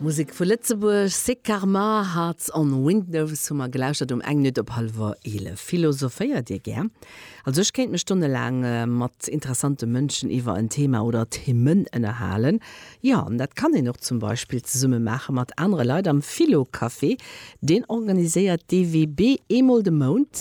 Musek vu Lëtzebuerg, Sick Karma, Hearts on Windows hu mer gelauschtert um eng Minutt op hallwer 11. Philosophéiert Dir gär? Also ech kéint mech stonnelaang mat interessante Mënschen iwwer en Thema oder Themen ënnerhalen. Jo, an dat kann een och zum Beispill zesumme maache mat anere Leit am Philo-Café. Deen organiséiert dee WB eemol de Mount.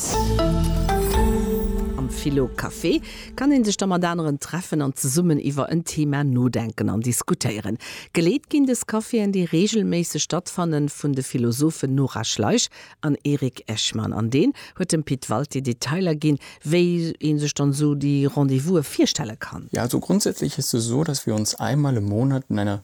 Am Philo Café kann een sech da mat aneren treffen an zesummen iwwer en Thema nodenken an diskutéieren. Geleet ginn des Caféen, déi reegelméisseg stattfannen, vun de Philosophen Nora Schleich an Erik Echmann. An deen huet dem Pit Walté Detailer ginn, wéi ee sech dann esou déi Rendez-vouse virstelle kann. Ja, also grundsätzlich ist es so, dass wir uns einmal im Monat in einer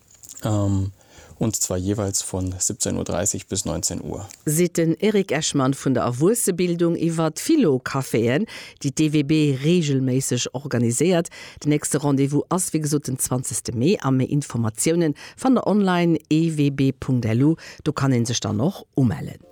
und zwar jeweils von 17.30 bis 19 Uhr. Seet den Eric Echmann vun der Erwuessebildung iwwer d'Philo-Caféen, déi d'EWB reegelméisseg organiséiert. Den nächste Rendez-vous ass wéi gesot den 20 Mee a méi Informatiounen fannt der online, ewb.lu. Do kann ee sech dann och umellen.